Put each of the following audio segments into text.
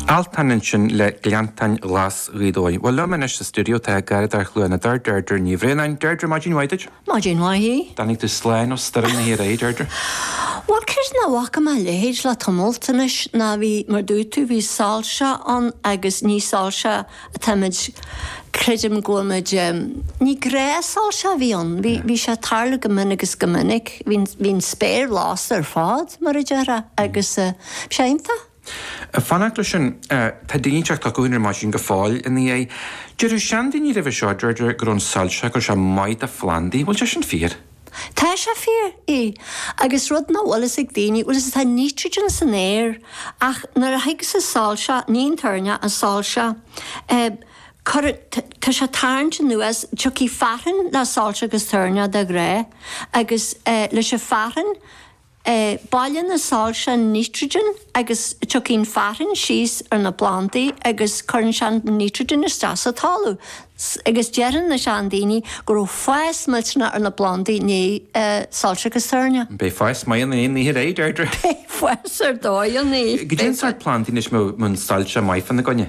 Altan ansin le Gleanntáin Ghlas Ghaoth Dobhair. Bhuel liom anois sa stiúideo tá garraíodóir Chluain na dTor, Deirdre Ní Bhraonáin. Deirdre, maidin mhaith duit. Maidin mhaith. Tháinig tú slán ó stoirm na toirní, Deirdre. Bhuel, cé is nach bhfaca mé a leithéid le tamalt anois ná bhí, mar a dúirt tú, bhí soilse ann agus ní soilse. Táimid, creidim go bhfuilmid, ní gnáthshoilse a bhí ann, bhí sé ag tarlú go minic is go minic, bhí an spéir lasta ar fad mar a déarfá agus bhí sé iontach. Fanacht leis sin, tá daoine ag teacht chucu féin ar maidin go fóill ina dhiaidh. Déarfadh seandaoine roimhe seo, Deirdre, go raibh an soilse, go raibh sé maith do phlandaí. Bhfuil sé sin fíor? Tá sé fíor, aye. Agus rud nach bhfuil fhios ag daoine, bhuel is atá nítrigin san aer ach nuair a thigeas an soilse, ní an toirneach, an soilse, eh, cuireann, tá sé ag tarraingt anuas, tiocfaidh fearthainn le soilse agus toirneach, de ghnáth, agus eh, leis an fearthainn, Bailíonn an soilse an nitrogen agus tiocfaidh an fearthainn síos ar na plandaí agus cuireann sé an nitrogen isteach sa talamh agus déarfadh na seandaoine go raibh fás millteanach ar na plandaí i ndiaidh soilse agus toirneach. Beidh fás maith ann ó inniu ar aghaidh, Deirdre. Beidh fás ar dóigh ann. Caidé an sórt plandaí anois a mbeadh soilse maith fána gcoinne.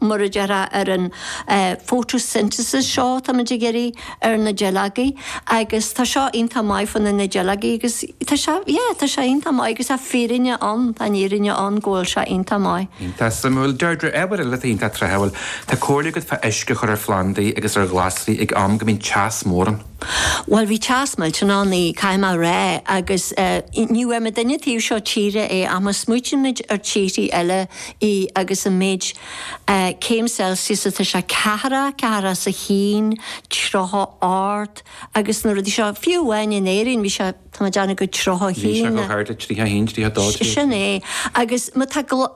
Mar a déarfá ar an photosynthesis seo táimid ag iarraidh ar na duilleogaí agus tá seo iontach maith fá na duilleogaí agus tá sé yeah tá sé iontach maith agus tá fírinne ann tá an fhírinne ann go bhfuil sé iontach maith. Iontach suimiúil. Deirdre, ábhar eile atá iontach tráthúil. Tá comhairle agat fá uisce a chur ar phlandaí agus ar ghlasraí ag am go mbíonn teas mór ann. Bhuel, bhí teas millteanach ann, caithfidh mé a rá, agus ní bhfuair muidinne an taobh seo tíre é, ach má smaoitímid ar tíorthaí eile agus an méid céim Celsius atá sé, ceathracha, ceathracha is a haon, tríocha a hocht agus na rudaí seo, fiú amháin in Éirinn bhí sé, tá mé ag déanamh go tríocha a haon. Bhí sé chomh hard le tríocha a haon, tríocha a dó, tríocha a trí. Sin é, agus má tá,